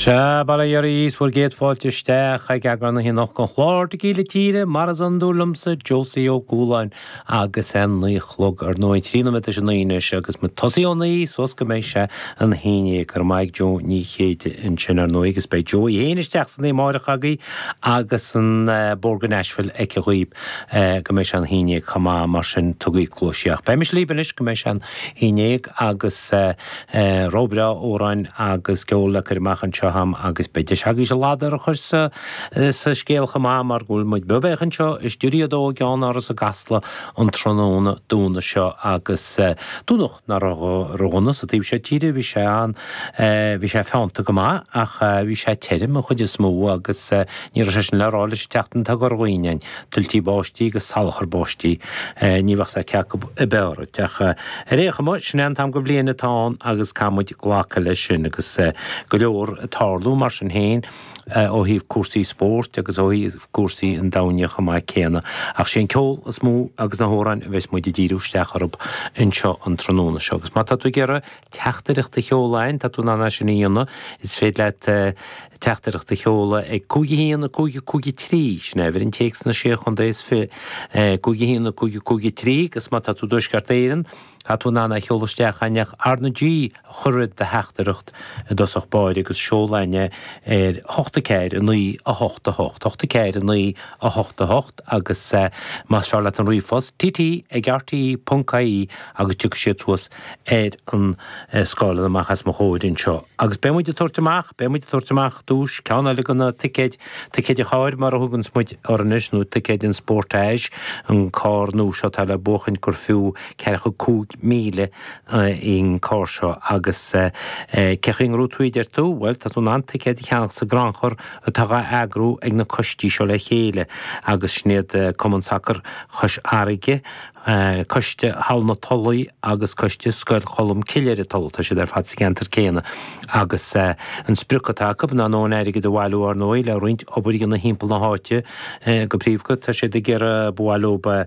Sea, bail ó Dhia oraibh is bhur gcéad fáilte isteach ag eagrán na hoíche anocht den chlár Tequila Tíre, mar is iondúil liomsa, Josie Ó Cualáin, agus é a naoi a chlog, ar ndóigh, trí nóiméad tar éis a naoi anois, agus muid tosaithe ó naoi, suas go, mbeidh sé an haon dhéag, go raibh maith ag Jo Ní Chéide ansin, ar ndóigh, agus beidh Jo í fhéin isteach san oíche amáireach agaibh, agus an Bóthar go Nashville aici dhaoibh, go mbeidh sé an haon dhéag, chomh maith, mar sin, tugaigí cluais di, ach beidh mise líbh anois, go mbeidh sé an haon dhéag, agus. Rogha breá amhráin agus ceol le cur amach anseo a'm agus beidh deis agaibhse a ladar a chur sa scéal chomh maith mar go bhfuil muid beo beathaíoch anseo i Stiúideo 2 i gceannáras i gCasla an tráthnóna Domhnaigh seo agus Domhnach nach raibh go dona sa taobh seo tíre, bhí sé an, bhí sé feannta go maith ach bhí sé tirim an chuid is mó agus ní raibh sé sin le rá leis an tseachtain atá curtha dhínn a'inn. tuiltí báistí agus salachar báistí. Ní bheadh a fhios a'd cé acu ab fhearr dhuit. Ach ar aon chuma, sin é an t-am go bhliain atá ann agus caithfidh muid glacadh leis sin agus go leor ag tarlú mar sin féin, ó thaobh cúrsaí spóirt agus ó thaobh cúrsaí an domhain chomh maith céanna. Ach sé an ceol is mó agus na hamhráin a bheas muid ag díriú isteach orthu anseo an tráthnóna seo agus má tá tú ag iarraidh teachtaireacht a sheoladh a'inn, tá tú in ann é sin a dhéanamh, is féidir leat teachtaireacht a sheoladh ag, cúig, a haon, a cúig, a cúig, a trí, sin é uimhir an téacs sna Sé Chontae is fiche, cúig, a haon, a cúig, a cúig, a trí, agus má tá tú i dTuaisceart Éireann, tá tú in ann é a sheoladh isteach a'inn ach R na G a chur roimh do theachtaireacht i dtosach báire agus seol a'inn é ar, hocht, a ceathair, a naoi, a hocht, a hocht, hocht, a ceathair, a naoi, a hocht, a hocht, agus más fearr leat an ríomhphost, tt ag rte ponc ie, agus tiocfaidh siad suas. ar an scáileán amach as mo chomhair anseo. Agus beidh muid ag tabhairt amach, beidh muid ag tabhairt amach ar dtús ceann eile de na ticéid, ticéid an chairr mar a thuganns muid orthu anois, nó ticéid an Sportage, an carr nua seo atá le buachaint gur fiú ceathracha cúig míle í an carr seo. Agus cé chaoi a ngnóthóidh tú í a deir tú? Bhuel, tá tú in ann ticéad a cheannach sa gcrannchur atá dhá eagrú ag na coistí seo le chéile agus sin iad Cumann Sacar Chois Fharraige, Coiste Halla na Tulaí agus Coiste Scoil Cholm Cille ar an Tulaigh, tá siad ar fad sa gceantar céanna agus an sprioc atá acu ná an airgead a bhailiú, ar ndóigh, le roinnt obair a dhéanamh thimpeall na háite. Go príomha tá siad ag iarraidh bualadh le.